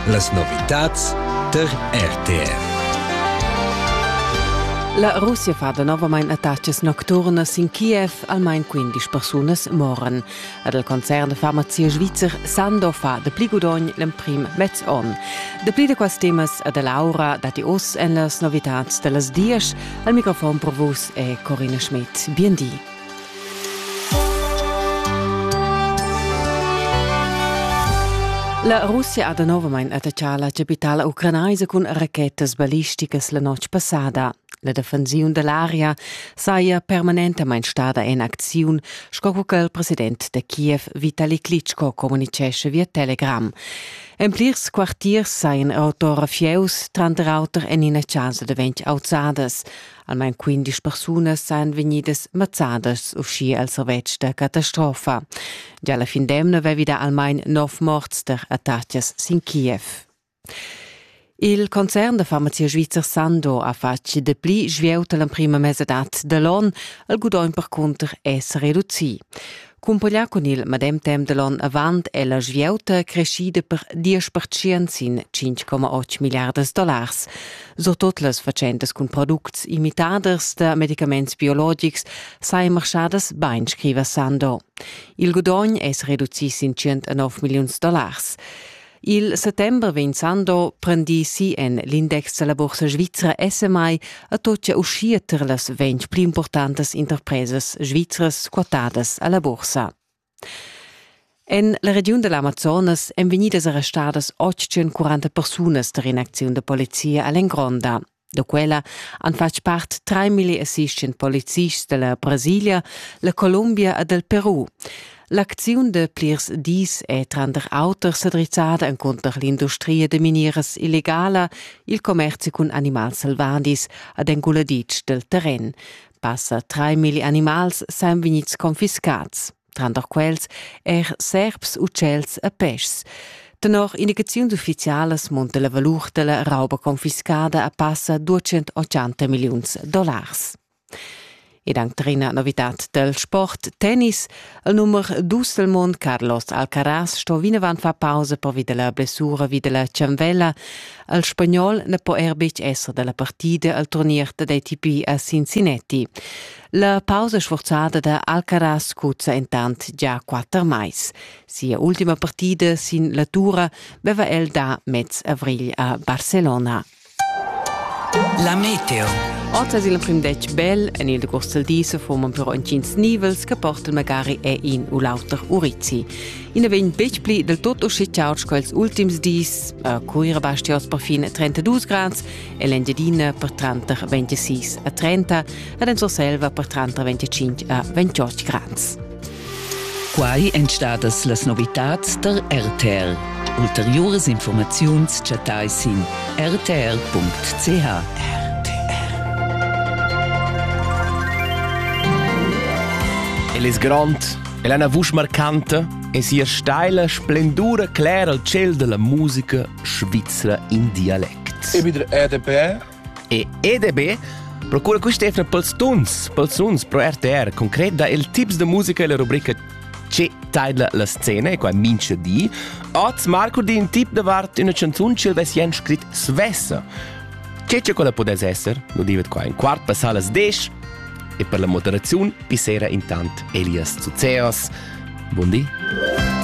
Las novitads tar RTR. La Russia fa novamain attacas nocturnas in Kiev, almain 15 persunas moran. Ad el concern de farmazia svizzer Sando fa de pli gudogn l'emprim mez on. Dapli de quas temas ad Laura dati oss en las novitats de las dias. Al microfon pro vus è Corina Schmidt. Bien di. La Russia ha danovamein attaccà la capitala ucranaisa cun rachetas ballisticas la notg passada. La defensiun dell'aria saja permanentamein stada en acziun, sco che il president de Kiev Vitali Klitschko communicesce via Telegram. En plirs quartiers saien autora fieus, tranter auter en ina chasa de ventg auzadas. Almain quindisch persunas san vegnidas mazzadas uschia al servetsch da catastrofa. Gia la fin d'emna vevida almain nov morts per attacas sin Kiev. Il concern da farmazia svizzer Sando ha fatg dapli svieuta l'emprima mesadad da l'on. Il gudogn per cunter è reducì. Cumpaglià cun il medem temp da l'onn avant è la svieuta creschida per 10% sin 5,8 milliardas dollars. Surtut las fatschentas cun products imitaders da medicaments biologics sajan marchadas bain, scriva Sando. Il gudogn è reducì sin 109 milliuns dollars. Il settember vegn Sando prendì si en l'index da la bursa svizra SMI a tocca uschia tar las ventg pli importantas interpresas svizras quotadas a la bursa. En la regiun dell'Amazonas èn vegnidas arrestadas 840 persunas tar in'acziun da polizia a l'Engronda. Da quella han fatg part 3500 polizists dalla Brasilia, la Columbia e del Peru. L'acziun de plirs dis è tranter auter sedrizzada encunter l'industria de minieras illegala, il commerci cun animals selvadis ed enguladitsch del terren. Passa 3.000 animals san vegnids confiscats. tranter quels er serps, ucels e peschs. Tenor indicaziun d'ufficialas monta la valur della rauba confiscada a passa 280 milliuns dollars. Ed anche trina novità del sport tennis, il numero Dusselmond Carlos Alcaraz sto vinavant far pausa per via della blessura vi della cianvella. Il spagnol ne po er betg essere della partida al turnier dell'ATP a Cincinnati. La pausa sforzada da Alcaraz cuzza intant già quatter mais. Sia ultima partida sin la tura beva el da mez avrigl a Barcelona. La meteo. Otas il prim detg bel, en il degost del disa forman però intgins nivels che portal magari è in u l'auter urizi. Ina vegn betg pli del tutto schiccauts quels ultims dis, a Cuira bastiaus perfin 32 grads e l'Engiadina per tranter 26 a 30 ed en Surselva per tranter 25 a 28 grads. Quai èn stadas las novitads der RTL. Ulteriores Informaziuns chattai sin rtr.ch. El es grond, el ha una vusch marcanta e sia steila splendura clera il ciel della musica svizra in dialect. EBIDR EDB e EDB procura quist'efna pels tuns, pels runs pro RTR concret da il tips da musica e la rubrica che taidla la scena e qua mincha di. Oz marco di un tip davart una canzun che vessien scrit svessa. Che che quella podess esser, lo divet qua in quart passar las desch e per la moderaziun pissera intant Elias Zuzeos. Buon di!